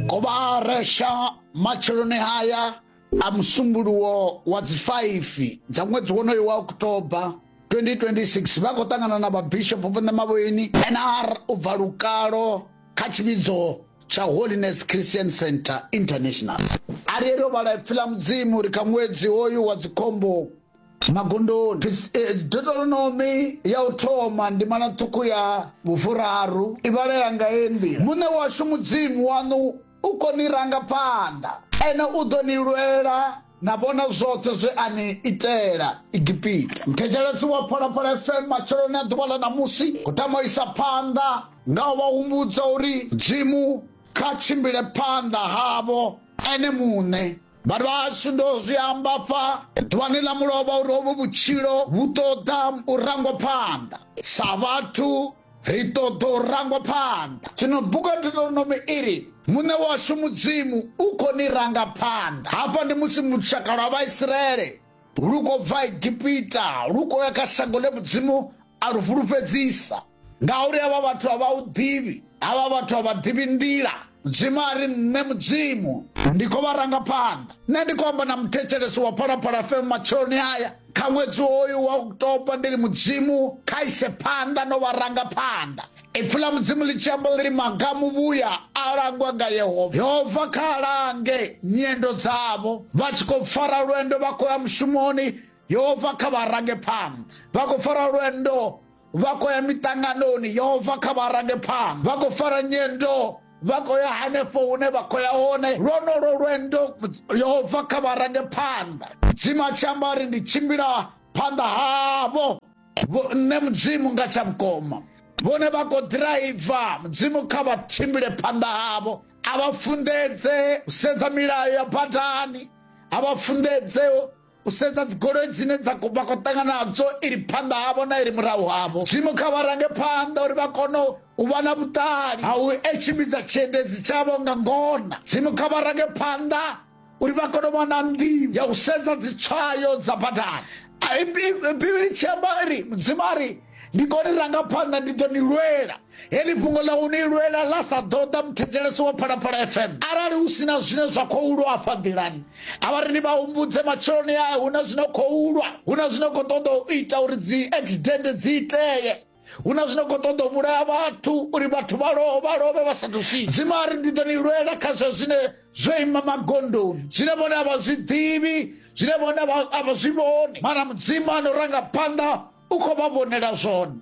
kobaresha matsheloni haya a musumbuluwo wa dzi 5 dza ṅwedzi wonoyo wa oktoba 2026 vha khou ṱangana na vhabishopo vho ṋemavhoini nr u bva lukalo kha tshivhidzo tsha holiness christian center international a ri ro vhala ipfi ḽa mudzimu ri kha ṅwedzi hoyu wa dzikhombo magondoni deuteronomi ya u thoma ndimana ṱhukhu ya vhufuraru i vhalea nga ye nḓila muṋe washu mudzimu waṋu u khou ni ranga phanḓa ene u ḓo ni lwela na vhona zwoṱhe zwe a ni itela igipita muthetshelesi wa phalaphala fm matsheloni a ḓuvha ḽa ṋamusi u tama u isa phanḓa nga u vha humbudza uri mudzimu kha tshimbile phanḓa havho ene muṋe vhathu vhashu ndo zwi amba fa ḓuvhani ḽa mulovha uri hovhu vhutshilo vhu ṱoḓa u rangwa phanḓa sa vhathu ri ṱoḓa u rangwa phanḓa zwino buka deuteronomi iri muṋe washu mudzimu u khou ni ranga phanḓa hafha ndi musi lushaka lwa vhaisraele Lu khou bva Egipita, lu khou ya kha shango ḽe Mudzimu a lu fhulufhedzisa. Ngauri havha vhathu a vha u ḓivhi, havha vhathu a vha ḓivhi nḓila. Mudzimu a ri, Nṋe Mudzimu ndi khou vha ranga phanḓa. Nṋe ndi khou amba na muthetshelesi wa Phalaphala FM matsheloni aya, kha ṅwedzi hoyu wa October, ndi ri Mudzimu kha ise phanḓa no vha ranga phanḓa. Ipfi ḽa Mudzimu ḽi tshi amba ḽi ri maga a muvhuya a langwa nga Yehova. Yehova kha a lange nyendo dzavho vha tshi khou fara lwendo vha khou ya mushumoni Yehova kha vha range phanḓa vha khou fara lwendo vha khou ya miṱanganoni Yehova kha vha range phanḓa vha khou fara nyendo vha khou ya hanefho hune vha khou ya hone lwonolo lwendo Yehova kha vha range phanḓa Mudzimu a tshi amba ri ndi tshimbila phanḓa havho Vho nṋe Mudzimu nga tsha vhukoma. Vhone vha khou ḓiraiva, Mudzimu kha vha tshimbile phanḓa havho. A vha funḓedze u sedza milayo ya badani, a vha funḓedze u sedza dzigoloi dzine dza vha khou ṱangana nadzo iri phanḓa havho na iri murahu havho dzimu kha vha range phanḓa uri vha kone u vha na vhuṱali ha u tshimbidza tshiendedzi tshavho nga ngona dzimu kha vha range phanḓa uri vha kone u vha na nḓivho ya u sedza dzitswayo dza badani bivhili tshi amba ri mudzimu a ri ndi koni ranga phanḓa ndi ḓo ni lwela heḽi fhungo ḽa u ni lwela ḽa sa ḓoḓa muthetshelesi wa phalaphala fm arali hu si na zwine zwa khou lwa afha nḓilani a vha ri ni vha humbudze matsheloni ae hu na zwino khou lwa hu na zwino khou ṱoḓa u ita uri dzi accident dzi itee hu na zwino khou ṱoḓa u vhulaya vhathu uri vhathu vha loo vha lovhe vha sathu swika dzima a ri ndi ḓo ni lwela kha zwa zwine zwo ima magondoni zwine vhone a vha zwi ḓivhi zwine vhone a vha zwi vhoni mara mudzimu a no ranga phanḓa u khou vha vhonela zwone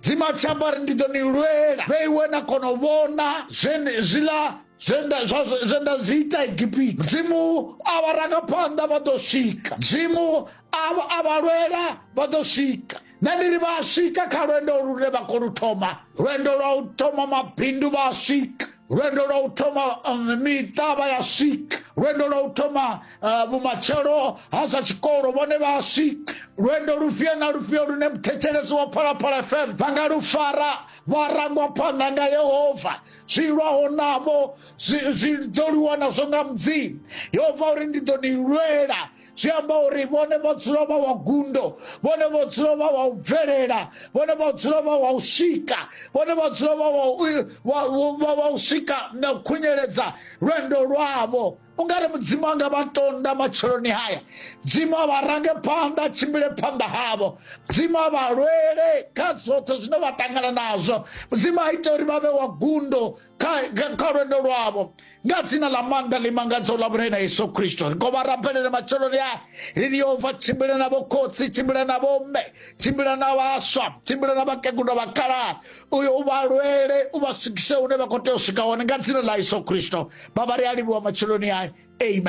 dzima a tshi amba ri ndi ḓo ni lwela vhe iwe na kona u vhona zwiḽa zwenda zwi ita egipita mudzimu a vha ranga phanḓa vha ḓo swika mudzimu a vha lwela vha ḓo swika Nṋe ndi ri vha a swika kha lwendo lune vha khou lu thoma lwendo lwa u thoma mabindu vha a swika lwendo lwa u thoma um, miṱa vha ya swika lwendo lwa u thoma uh, vhumatshelo ha zwa tshikolo vhone vha a swika lwendo lufhio na lufhio lune muthetshelesi wa phalaphala fm vha nga lu fara vha rangwa phanḓa nga yehova zwi lwaho navho zwi ḓo lwiwa nazwo nga mudzimu yehova uri ndi ḓo ni lwela zwi amba uri vhone vho dzula vha wa gundo vhone vho dzula vha wa u bvelela vhone vho dzula vha wa u swika vhone vho dzula vha wa u swika na u khunyeledza lwendo lwavho u nga ri mudzimu a nga vha tonda matsheloni haya dzimu a vha range phanḓa a tshimbile phanḓa havho dzimu a vha lwele kha zwoṱhe zwine vha ṱangana nazwo mudzimu a ite uri vha vhe wa gundo kha lwendo lwavho nga dzina ḽa maanḓa ḽi mangadzaho ḽa vhulai na yesu kristo ri khou vha rabelele matsheloni a ri ni yehova tshimbila na vhokhotsi tshimbila na vhomme tshimbila na vhaswa tshimbila na vhakegulu vhakalaha uyo u vha lwele u vha swikise hune vha khou tea u swika hone nga dzina ḽa yesu kristo vha vha ri a livhuwa matsheloni a amen